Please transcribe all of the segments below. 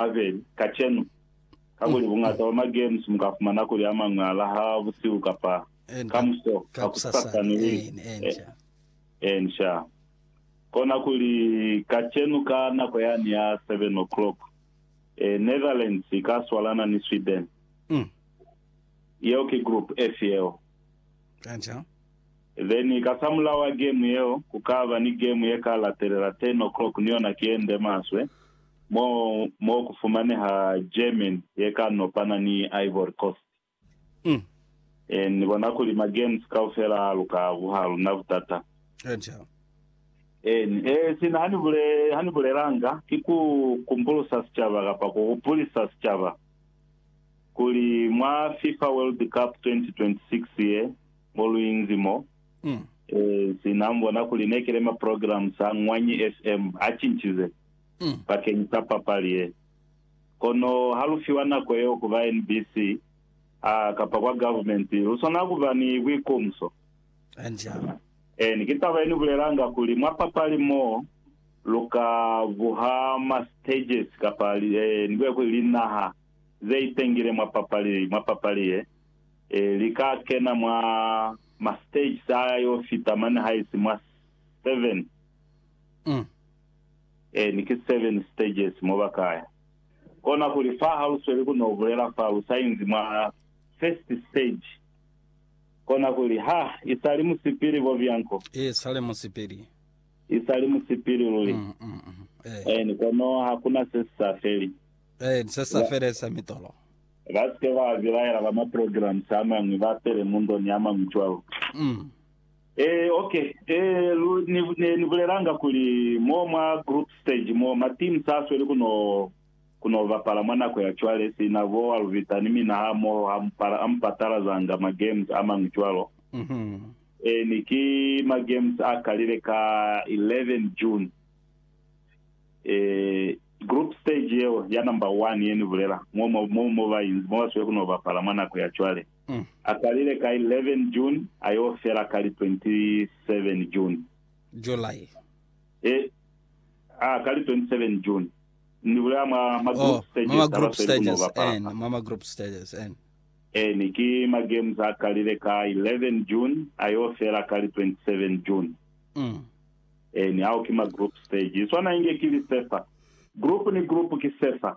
Abeli, kacenu, kakuli buñata bwa maGems mukafumana kuli amañwi alaha busihu kapa kamuso, kakusasa ni li ensha. Kona kuli kacenu ka nako yani ya 7:00, Netherlands ika swalana ni Sweden. Yeo ki Group F yeo. Then ka samulaho wa game yeo, kukaba ni game yeka latelela 10:00 ni yona ki yende maswe. mo mo ku fumaneha Germany ye ka nopana ni Ivory Coast. Mm. E, ni bona kuli ma-games kaufela a luka ku ha luna butata. Eja. Eni, e, sina ha ni bule, ha ni bulelanga, ki ku kumbulusa sicaba kapa ku hupulisa sicaba kuli mwa FIFA World Cup 2026 ye mo lu inzi mo, Mm. e, sina mu bona kuli ne ki le ma-programs a Ngwanyi FM a cincize. bakeng sa papali ye. Kono ha lu fiwa nako yeo ku ba NBC a kapa kwa government, lu swanela ku ba ni buikumso. Eeni, ki taba ye ni bulelanga kuli mwa papali mo lu ka buha ma stages kapa ni buya kuli linaha ze itengile mwa papali, mwa papali ye, li ka kena mwa ma stages a yo fita mane haisi mwa 7. Mm. Ee, ni ki seven stages mo ba ka ya. Kona kuli fa ha lu sweli ku no bulela fa lu sa inzi mwa first stage, kona kuli, Ha, i sa li musipili, Bobianco. I sa li musipili. I sa li musipili luli. Mm, mm, mm. Ee. Ee, ni kono ha ku na se si sa feli. Ee, ni se si sa feli sa mitolo. Ba si ke ba bilaela ba ma programs a mañwi, ba pele mu ndo ni a mañwi cwalo. Mm. Ee, ok. Ee, lu, ni, ne ni bulelanga kuli, mo mwa group stage mo, ma team sa sweli ku no, ku no bapala mwa nako ya cwale, sina bo Alvita ni mina ha moho, ha mu pala, a mu patalazanga ma games a mañwi cwalo. Ee, ni ki ma games a kalile ka 11 June. Ee, group stage yeo, ya number one ye ni bulela, mo, mo, mo, mo ba inzi, mo ba sweli ku no bapala mwa nako ya cwale. A kalile ka 11 June a yo fela ka li 27 June. July. E, a ka li 27 June. Ni bulela mwa ma Oh, group mwa stages ma a group basweli ku no stages bapala en, fa. mwa ma group stages en. Eni, ki ma games a kalile ka 11 June a yo fela ka li 27 June. Mm. Eni, ao ki ma group stage. I swana inge ki li sefa. Group ni group ki sefa.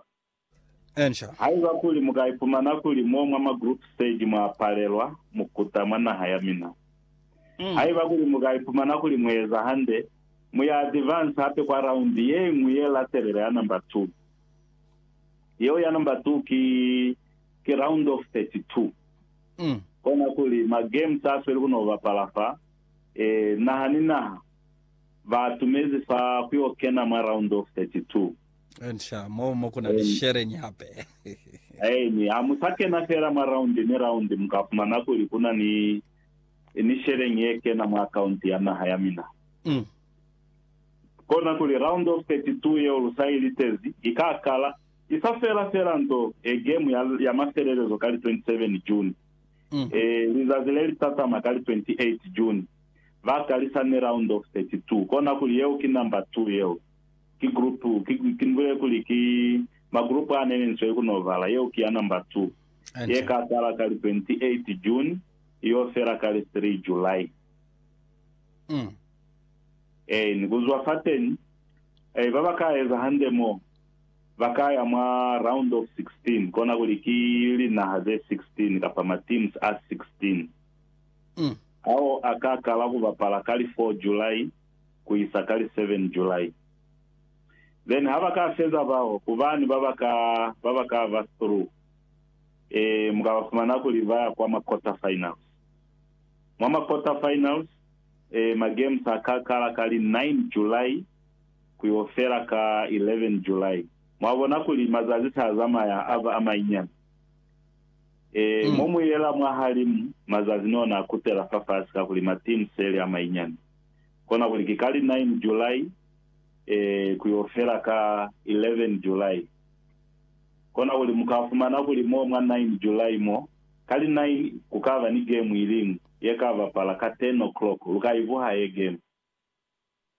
Haiba kuli mu ka ipumana kuli mo mwa ma group stage mwa palelwa, mu kuta mwa naha ya mina. Haiba kuli mu ka ipumana kuli mu eza hande, mu ya advance hape kwa raundi ye ñwi ye latelela ya number two. Yeo ya number two ki, ki round of 32. Kona kuli ma games a sweli ku no bapala fa, eh, naha ni naha ba atumezi fa ku yo kena mwa round of 32. Nca, moo mo ku na ni sheleñi hape. Amen. Ha mu sa kena feela mwa raundi ni raundi, mu ka fumana kuli ku na ni, ni sheleñi ye kena mwa akaunti ya naha ya mina. Mm. Kona kuli Round of 32 yeo lu sa i litezi, i ka kala, i sa fela feela nto, e gemu ya, ya mafelelezo ka li 27 June. Mm. E, lizazi le li tatama ka li 28 June. Ba kalisa ni Round of 32. Kona kuli yeo ki number 2 yeo. Ki group, ki, ki mbule kuli ki ma group a ne ni nzwe ku no bala. Yeo ki ya number two. Ye ka qala ka li 28 June, i yo fela ka li 3 July. Um. Ee, ni ku zwa fateni, eh, ba ba ka eza hande mo, ba ka ya mwa Round of 16, kona kuli ki linaha ze 16 kapa ma teams a 16. Um. Ao a ka kala ku bapala ka li 4 July. ku isa ka li 7 July. Then ha ba ka feza bao, ku bani ba ba ka, ba ba ka ba through? Ee, mu ka ba fumana kuli ba ya kwa ma quarter finals. Mwa ma quarter finals, ee, ma games a ka kala ka li 9 July ku yo fela ka 11 July. Mwa bona kuli mazazi sa zamaya a ba a manyinyani. Ee, mo mu yela mwahalimu, mazazi ni ona a kutela fafasi kakuli ma teams se li a manyinyani. Kona kuli ki kali 9 July eeh ku yo fela ka 11 July. Kona kuli mu ka fumana kuli mo mwa 9 July mo, kali 9 ku ka ba ni game iliñwi ye ka bapala ka 10 o'clock, lu ka i buha ye game.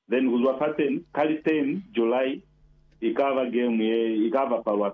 Then kuzwa fateni, kali 10 July i ka ba game ye i ka bapalwa ka